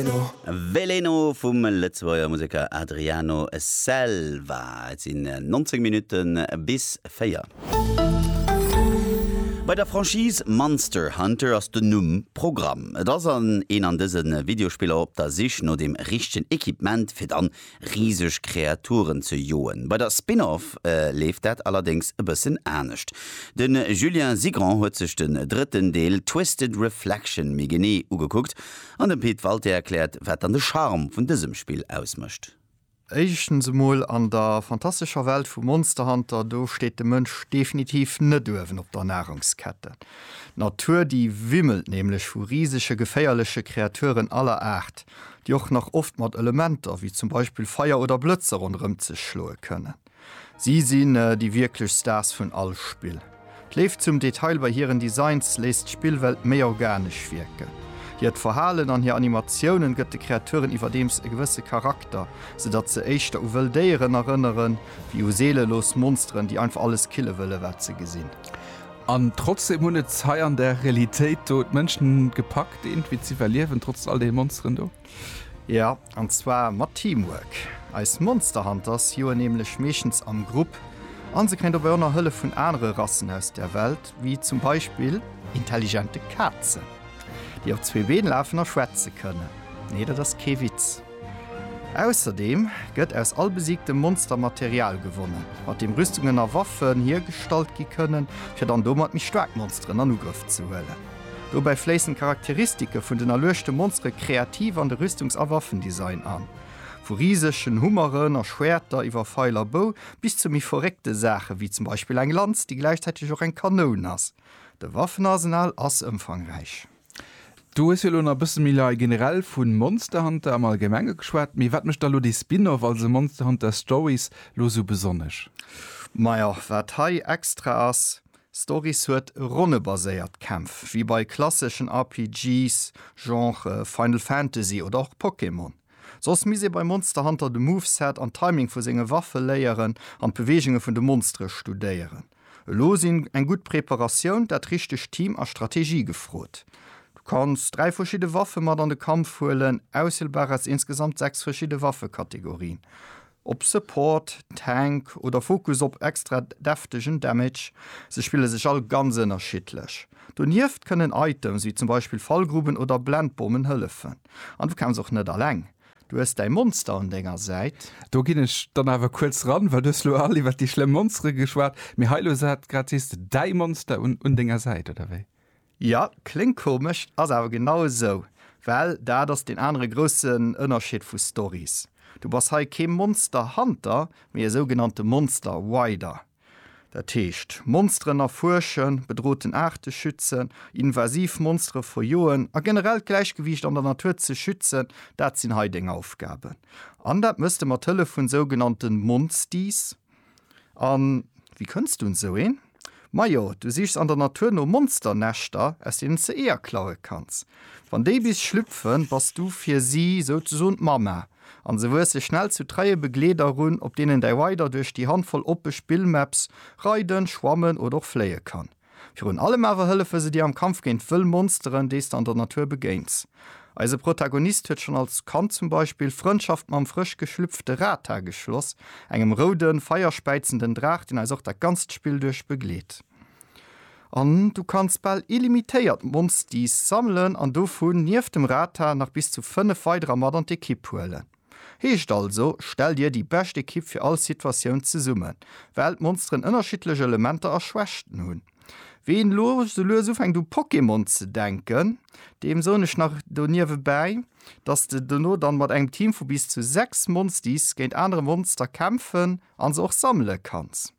Veleno. Veleno vum Lëtzebuerger Museker Adriano Selva. Et sinn 19 Minutte bis 4. Bei der Franchise Monster Hunter ass den Numm Programm. Et ass an een an dëse Videospiller op der Sich no dem richtegen Equipement fir dann riseg Kreaturen ze joen. Bei der Spin-Off leeft dat allerdéngs e bëssen anescht. De Julien Sigrand huet sech den drëtten Deel Twisted Reflection méi genee ugekuckt An den Pit Walté erkläert wat dann de Charme vun dësem Spill ausmëscht. Éischtens emol, an der fantastescher Welt vu Monster Hunter, do steet de Mënsch definitiv net uewen op der Nahrungskette. D'Natur déi wimmelt nämlech vu risege geféierleche Kreaturen aller Aart, déi och nach oft mat Elementer wéi zum Beispill Feier oder Blëtzer ronderëm sech schloe kënnen. Si sinn déi wierklech Stars vun all Spill. D'Léift zum Detail bei hiren Designs léisst d'Spillwelt méi organesch wierken. Hiert Verhalen an hir Animatiounen gëtt de Kreaturen iwwerdeems e gewësse Charakter, sou datt se éischter u wëll Déieren erënnere wéi u seelelos Monsteren, déi einfach alles kille wëllen, wat se gesinn. An trotzdeem hunn et hei an der Realitéit do d'Mënschen gepackt, eenent wéi z'iwwerliewen, trotz all deene Monsteren do. Jo, an zwar mat Teamwork. Eis Monster Hunters joen nämlech meeschtens am Grupp an se kréien dobäi och nach Hëllef vun anere Rassen aus der Welt, wéi zum Beispill intelligente Kazen, déi op zwee Been lafen a schwätze kënnen. Nee, dat ass kee Witz. Ausserdeem gëtt aus all besiegtem Monster Material gewonnen, mat deem Rüstungen a Waffen hiergestallt gi kënnen, fir dann domat méi staark Monsteren an Ugrëff ze huelen. Dobäi fléissen d'Charakteristike vun den erluechte Monsteren kreativ an de Rüstungs a Waffendesign an. Vu risegen Hummeren a Schwäerter iwwer Feil a Bou bis zu méi verréckte Saachen, wéi zum Beispill eng Lanz, déi gläichzäiteg och eng Kanoun ass. De Waffenarsenal ass ëmfangräich. Du hues jo elo nach e bësse méi lei generell vu Monster Hunter am Allgemenge geschwat, mee wat mécht da elo dee Spin-off, also Monster Hunter Stories, elo esou besonnesch? Majo, wat hei extra ass, Stories huet ronnebaséiert Kämpf, wéi bei klasseschen RPGs, Genre Final Fantasy oder och Pokémon. Soss misst ee bei Monster Hunter de Moveset an Timing vu senge Waffe léieren an d'Beweegunge vun de Monstere studéieren. Elo sinn eng gutt Preparatioun, dat richtegt Team a Strategie gefrot. Du kanns dräi verschidde Waffe mat an de Kampf huelen, auswielbar aus insgesamt sechs verschidde Waffekategorien. Ob Support, Tank oder Fokus op extra deftegen Damage, se spille sech all ganz ënnerschiddlech. Donieft kënnen Items wéi zum Beispill Fallgruben oder Blendbommen hëllefen. An du kämpfs och net alleng, du hues däi Monster un denger Säit. Do ginn ech dann awer kuerz eran, well du hues elo all iwwer déi schlëmm Monstere geschwat, mee hei elo, sat grad, sees de däi Monster un denger Säit, oder wéi? Jo, kléngt komesch, ass awer genau esou, well dat ass deen anere groussen Ënnerscheed vu Stories. Du bass hei kee Monster Hunter, mee e sougenannte Monster Rider. Dat heescht, Monsteren erfuerschen, bedroten Aarte schützen, invasiv Monstere verjoen a generell d'Gläichgewiicht an der Natur ze schützen, dat sinn hei deng Aufgaben. An dat mëss de mat Hëllef vun sougenannte Monsties. An wéi kënns du un esou een? Majo, du sichs an der Natur no Monsternäschter, aus deenen s de Eeër klaue kanns. Wann déi bis schlüpfen, bass du fir si souzesoen d'Mamma, an se wuesse schnell zu treie Begleeder erun, op deenen däi Rider duerch déi Handvoll oppe Spillmaps reiden, schwammen oder och fléie kann. Virun allem awer hëllefe se dir am Kampf géint wëll Monsteren, déi s de an der Natur begéins. Eise Protagonist huet schonn als Kand zum Beispill Frëndschaft mam frësch geschlüpfte Rata geschloss, engem roude, feierspäizenden Draach, deen eis och dat ganzt Spill duerch begleet. An du kanns bal illimitéiert Monsties sammelen an dovun, nieft dem Rata, nach bis zu fënnef weiderer mat an d'Ekipp huelen. Heescht also, stell dir déi bescht Ekipp fir all Situatioun zesummen, well d'Monsteren ënnerschiddlech Elementer a Schwächten hunn. Ween lo sou lues ufänkt u Pokémon ze denken, deem soen ech nach do niewebäi, dass de dono dann mat engem Team vu bis zu 6 Monsties géint anere Monster kämpfen an se och sammele kanns.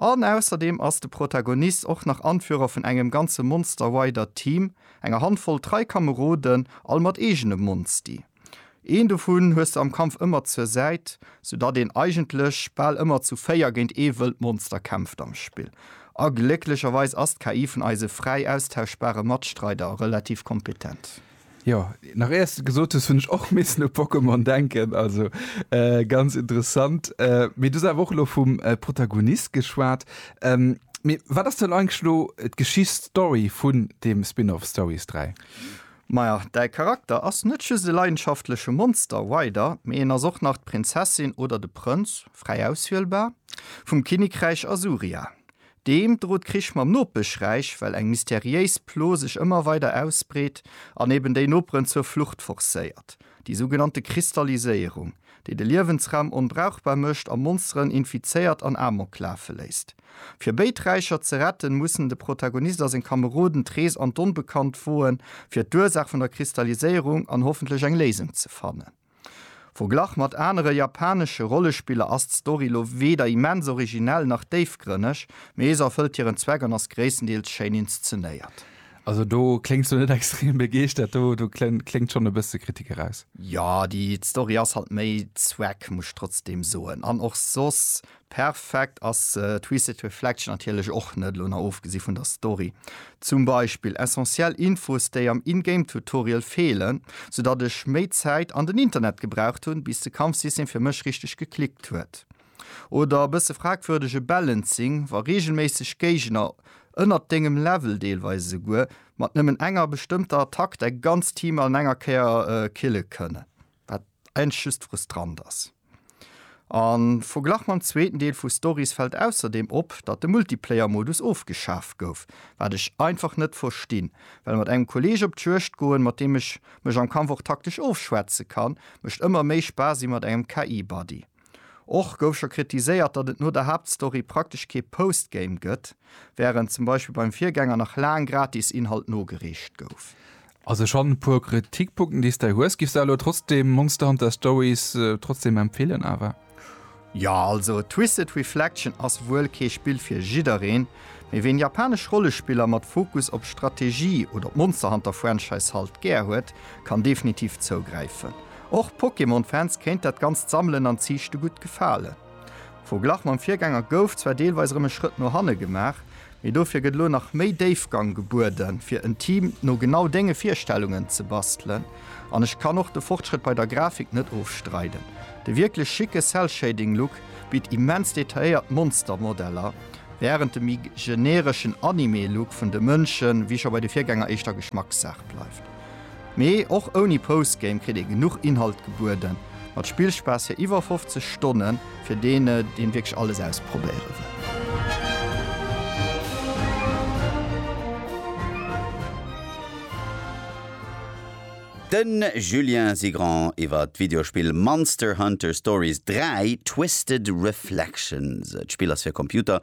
An ausserdeem ass de Protagonist och nach Anführer vun engem ganze Monsterwider Team, enger Handvoll trei Kameroden, all mat eegene Monsti. Een dovun hues de am Kampf ëmmer zur Säit, sou datt een eigentlech bal ëmmer zu véier géint ee wëllt Monster kämpft am Spill. A glécklecherweis ass d'KI vun eise fräi austauschbare Matstreider relativ kompetent. Jo, nach éiers de gesot hues, hunn ech och missen u Pokémon denken, also ganz interessant. Mee du hues awer och elo vum Protagonist geschwat. Mee wat ass dann eigentlech elo d'Geschicht, d'Story vun deem Spin-off Stories 3? Maja, däi Charakter ass net just e leidenschaftleche Monster Rider, mee en ass och nach d'Prinzessin oder de Prënz, fräi auswielbar, vum Kinnekräich Asuria. Deem droht Krich mam Nopeschräich, well eng mysteriéis Plo sech ëmmer weider ausbreet an eben déi Noperen zur Flucht forcéiert, déi sougenannte Kristalliséierung, déi de Liewensraum onbrauchbar mécht a Monsteren infizéiert an Amok lafe léisst. Fir béid Räicher ze retten, mussen de Protagonist a seng Kameroden d'Rees an d'Onbekannt woen, fir d'Ursaach vun der Kristalliséierung an hoffentlech eng Léisung ze fannen. Verglach mat anere japanesche Rollespiller ass d'Story lo weder immens originell nach déifgrënneg, mee ee se erfëllt hiren Zweck an ass gréisstendeels schéin inszenéiert. Also do kléngs du net extrem begeeschtert, do kléngt schonn e bësse Kritik eraus. Jo, déi d'Story ass halt méi Zweck, muss ech trotzdem soen, an och soss Perfekt ass Twisted Reflection natierlech och net, elo nach ofgesi vun der Story. Zum Beispill essentiell Infos déi am In-Game Tutorial feelen, sou datt ech méi Zäit an den Internet gebraucht hunn bis de Kampfsystem fir mech richteg geklickt huet. Oder bësse fragwürdege Balancing, wa reegelméisseg Géigner ënnert dengem Level, deelweis esouguer mat nëmmen enger bestëmmter Attack, däi ganzt Team an enger Kéier kille kënnen. Wat Eent just frustrant ass. An verglach mam zweeten Deel vu Stories fällt ausserdeem op, datt de Multiplayer Modus ofgeschaf gouf, wat ech einfach net verstinn, well mat engem Kolleg op d'Juegd goen, mat deem ech mech am Kampf och taktesch ofschwätzen kann, mécht ëmmer méi Spaass ewéi mat engem KI Buddy. Och gouf scho kritiséiert, datt et no der Haaptstory praktesch kee Postgame gëtt, wärend zum Beispill beim Virgänger nach laang gratis Inhalt nogereecht gouf. Also schonn e puer Kritikpunkten déi s de hues. Giffs de elo trotzdem Monster Hunter Stories trotzdem empfeelen awer? Jo, also Twisted Reflection ass wuel kee Spill fir jiddereen, mee ween japanesch Rollespiller mat Fokus op Strategie oder d'Monster Hunter Franchise halt gär huet, kann definitiv zougräifen. Och Pokémon-Fans kéint dat ganzt Sammelen an Ziichte gutt gefalen. Am Verglach mam Virgänger gouf zwar deelweis erëm e Schrëtt no hanne gemaach, mee dofir gëtt elo nach méi Déifgang gebueden, fir en Team no genau denge Virstellungen ze bastelen. An ech kann och de Fortschrëtt bei der Grafik net ofstreiden, de wierklech schicke Cell-Shading-Look bitt immens detailléiert Monster-Modeller, wärend de méi genereschen Anime-Look vun de Mënschen, wéi scho bei de Virgänger, éischter Geschmackssaach bleift. Mee och ouni Postgame kritt ee genuch Inhalt gebueden. Mat Spillspaass fir iwwer 50 Stonnen, fir deen deen wierklech alles ausprobéieren wëll. De Julien Sigrand iwwer d'Videospill Monster Hunter Stories 3, Twisted Reflections. D'Spill ass fir Computer,